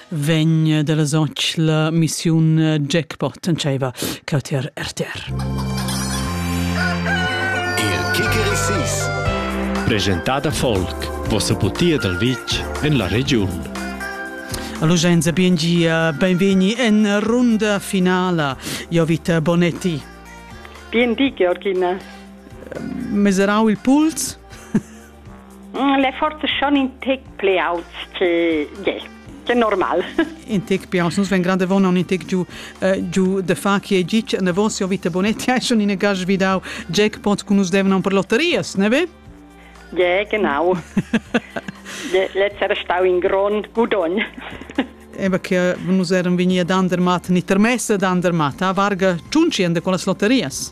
vegn dalla soc la missiun jackpot entscheiva cautier RTR. Il Kicker Sis presentada folk vossa butia dal vitg en la regiun. Allo Genza Biengia, benveni en runda finala. Jovita Bonetti. Bien di, Georgina. Meserau il puls? Le forze schon in tec pli auts che ge, che normal. In tec più aunz, nus ven grande von un tec giù äh, giù de fa che gic ne von sia vita bonetti hai schon in gage vidau jackpot kun us devna per lotterias, ne ve? Ja, genau. Letzt era stau in grond gudogn. Eba che nus eram vegni ad Andermatt, ni termessa ad Andermatt, a varga ciunci ende con las lotterias.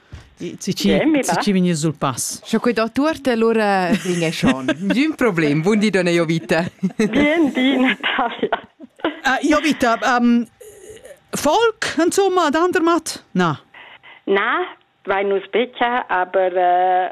Si ci, si ci vegni sul pass. Scho quei dottor te allora vinghe schon. D'un problem, buon di donna Jovita. Bien di Natalia. Uh, Jovita, um, Folk, insomma, ad andermat? Na. Na, vai nus becha, aber uh,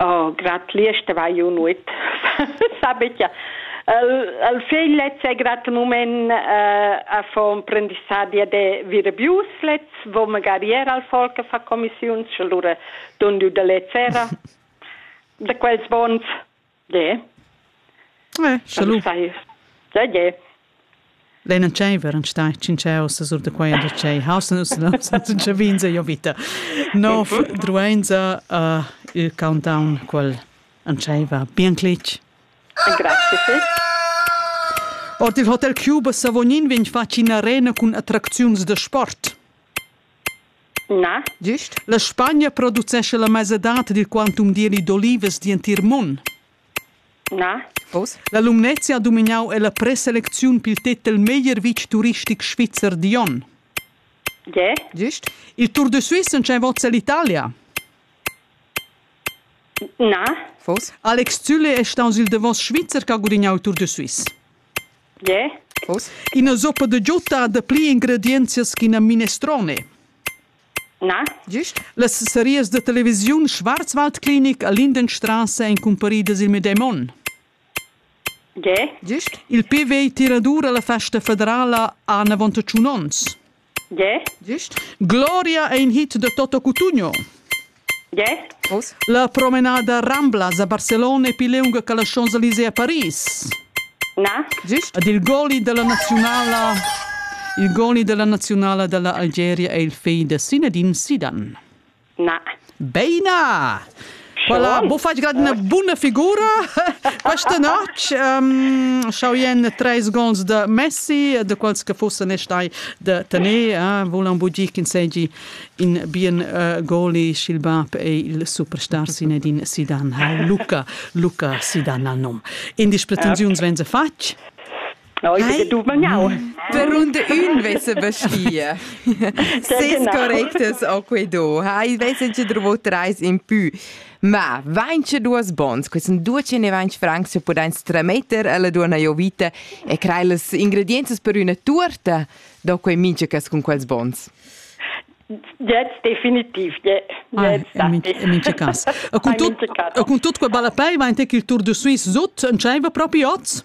Oh, grad plirs vai io nuot. Sabetia. El, el fegl lez è grad un moment uh, a fa un prendisadia de virabius lez, vo magari era al folk a fa commissiuns, allora don diu de lez era de quels bons. De. Eh, salud. Da ge. Lena Tscheiver an stai cinceo sa sur da quei da tschei hausen us no san chavins jo vita. Nof druenza uh, il countdown quel an tscheiva bien clic. Grazie fil. Ord il Hotel Cuba Savognin vegn fatg in arena cun attracziuns da sport. Na. Gist. La Spagna producescha la mesadad dil quantum d'ieli d'olivas d'entir mund. Na. Oz. La Lumnezia ha dumignau ella preselecziun pil tetel meglier vitg turistic svizzer digl onn. Gie. Gist. Il Tour de Suisse entscheiva ell'Italia. Na. Fos. Alex Zülle è staus il davos Svizzer che ha gudignau il Tour de Suisse. Yeah. Ina zoppa da giutta da pli ingredienzias ch'ina minestrone. Na? Gist? Las serias da televisiun Schwarzwald Klinik a Lindenstrasse ein cumparidas il medem onn. Yeah. Gist? Il PV tiradur alla festa federala ha anavon tschun onns. Ge? Gist. Gloria è in hit de Toto Cutugno. Ge? Vos? La promenada Ramblas a Barcelona è più lunga che la Champs-Élysées a Paris. Na? Gist. Ed il goli della nazionala il goli della nazionala dell'Algeria è il figl de Zinedine Zidane. Na. Beina! Voilà, bo fatg grad una buna figura questa notte. Um, Schauen treis gols de Messi, de quals che fossen e stai de tener, eh, volan budir ch'in segi in bien uh, goli sch'il bab ei il superstar Zinedine Zidane. Ha Luca, Luca Zidane al nom. In dis pretensiuns venza fatg? Oi, che dumagnau. Per und ün vessa vestida. Ses correctes o quei do. Ha, i vessen che drovo trais in pü. Ma, vaince duas bons, que sun duce ne vaince francs che pudain strametter alla duona Jovita e crei las ingredienzas per üna tuorta, do quei minche cas cun quels bons. Jetzt definitiv, yeah. Ah, in mince cas. E con tut, e con tut quei ballapei vain te il Tour de Suisse sut, en tscheiva propi oz?